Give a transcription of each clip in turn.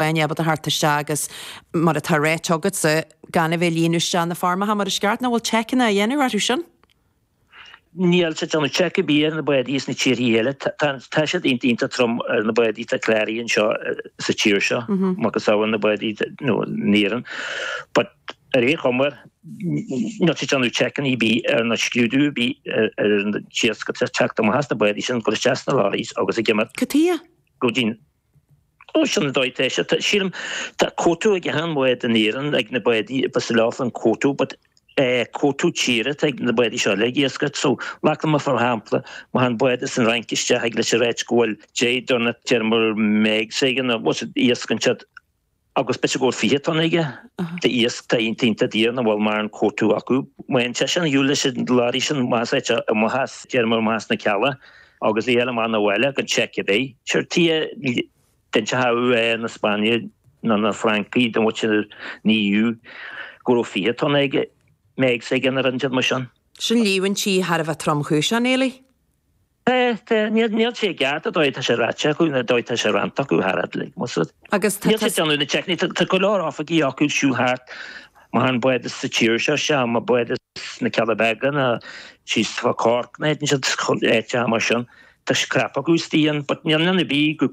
Bain iad a thabhairt isteach agus, mar atá ráite agatsa, gan a bheith ag líonadh isteach na foirmeacha mar is ceart. Nach bhfuil seiceanna á dhéanamh orthu sin? Níl siad ag déanamh seic ar bith ar na bádaí as na tíorthaí eile, tá siad iontach trom ar na bádaí atá cláraithe anseo sa tír seo, macasamhail na bádaí in Éirinn. But ar aon chuma, níl siad ag déanamh seiceanna ar bith ná scrúdú ar bith ar an iasc atá ag teacht amach as na bádaí sin, ag dul isteach sna lorries agus ag imeacht. Cad chuige? Go dtí an. Sin an dóigh leis. Sílim, tá cuóta ag achan bhád in Éirinn, ag na báid, ba sa leabhar an cuóta, but cuóta tíre atá ag na bádaí seo le iascach. So, glacaimis mar shampla, má théann bád as an Fhrainc isteach thig leis a ráit go bhfuil 10 dtonna, déarfaidh muid, megs aige, a bhfuil siad iascach ansiud, agus b'fhéidir go bhfuil 20 tonna aige d'iasc atá iontach daor nach bhfuil mórán cuóta acu. Má théann seisean, Ulysse Glady's an más é seo amuigh as déarfaidh muid amach as na Cealla, agus bhí eile ann abhaile gan seic ar bith. Sure, cé a d'inseochadh é na Spáinnigh nó na Francaigh don bhfuil sin ní fhiú go raibh 20 tonna aige, megs aige gan ar an dearmad sin. Sin líomhaintí thar a bheith tromchúiseach, a Néilí? Níl sé i gceart, ar ndóigh, tá sé ráite acu, ar ndóigh, tá sé rannta acu thar fhad uilig, más rud. Agus tá. Níl siad ag déanamh na seiceanna, tá go leor oifigigh acu ag siúl thart, má tháinig bád as an tír seo, sea, má bád as na Cealla Beaga, nó síos fá Cork, nó áit ansin, áit mar sin, tá scrap acu is dian, but níl ann ar bith go,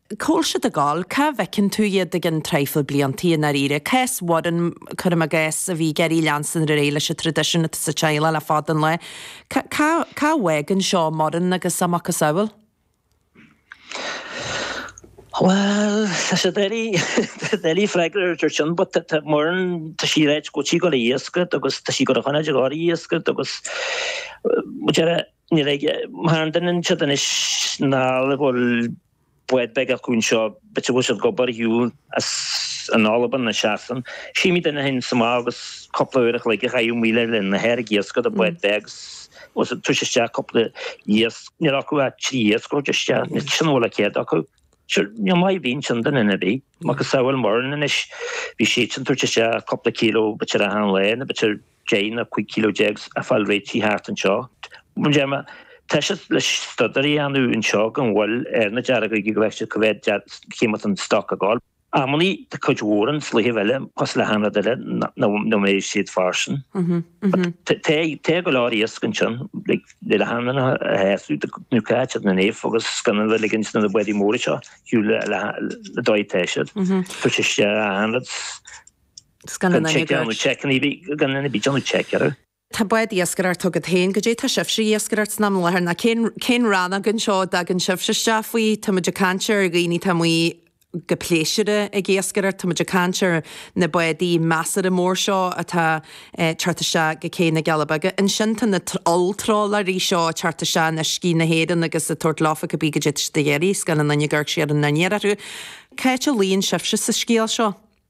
Cá bhfuil siad ag gabháil, cá bhfeiceann tú iad i gceann traidhfil bliantaí i ndáiríre? Cás Mhuireann, cuirim i gcás, a bhí ag iarraidh leanstan ar aghaidh leis an traidisiún atá sa teaghlach le fada an lá. Cá, cá bhfág an seó Moran agus a macasamhail? Bhuel, tá sé doiligh, doiligh freagra ar ar sin, but tá Muireann, tá sí ag ráit go bhfuil sí ag dul a' iascach agus tá sí ag dul a choimeád ag gabháil a' iascach agus, muid ar a'. Ní bheidh mar an doineann siad anois ná le go bhfuil bád beag acu anseo, b'fhéidir go bhfuil siad ag obair ar shiúl as an Albain nó Sasain. Shuímid anois féin sa mbád agus cúpla uair a chloig a chaitheamh maoil ar leith na hearraigh iascaigh do bhád beag agus tabhairt isteach cúpla iasc. Níl acu ach trí iasc a thabhairt isteach, sin a bhfuil de chead acu. Sure, níl maith ar bith ansin do dhuine ar bith. Macasamhail Muireann anois, bhí sí sin ag tabhairt isteach cúpla cíleo b'fhéidir achan lá nó b'fhéidir Deich nó cúig kilo déag a fháil réitithe thart anseo. Deir mé, tá sé le staidéar a dhéanamh anseo gan mhoill ar na deargóga go bhfeictear cá mhéad chímid den stoc ag gabháil. Amannaí tá cuid mhór den slitheamh eile cosúil le hachan rud eile nó mbeidh siad fairsing. Tá go leor iasc ansin le le hamanna a sheasamh nó caitear na dhéanamh agus gan a bheith ag ligint do na bádaí móra seo ar shiúl le dóigh atá siad. Tá sé sé achan rud. Tá bád iascaire agat féin. Goidé tá sibhse ag iascaireacht ins an am i láthair ná cén rannóg anseo a dtagann sibhse isteach faoi? Tá muid ag caint ar dhaoine atá amuigh go pléisiúrtha ag iascaireacht, tá muid ag caint ar na bádaí measartha mór seo atá ag teacht isteach go cé na gCealla Beaga. Ansin tá na olltrálaeirí seo ag teacht isteach in uiscí na hÉireann agus ag tabhairt leofa cibé goidé tá siad ag iarraidh, scaoileann an Fhine Ghoirtí ar an ndiaidh orthu. Cá háit a luíonn sibhse sa scéal seo?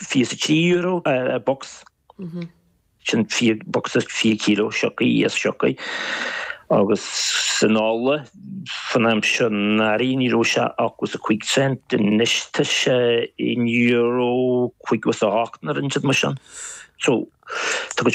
€23 an bocsa, sin bocsa 20 kilo sioctha, iasc sioctha, agus an ola san am seo anuraidh ní raibh sé ach os a cúig cent, anois tá sé in euro cúig is a hocht, nó rud inteacht mar sin. So, tá go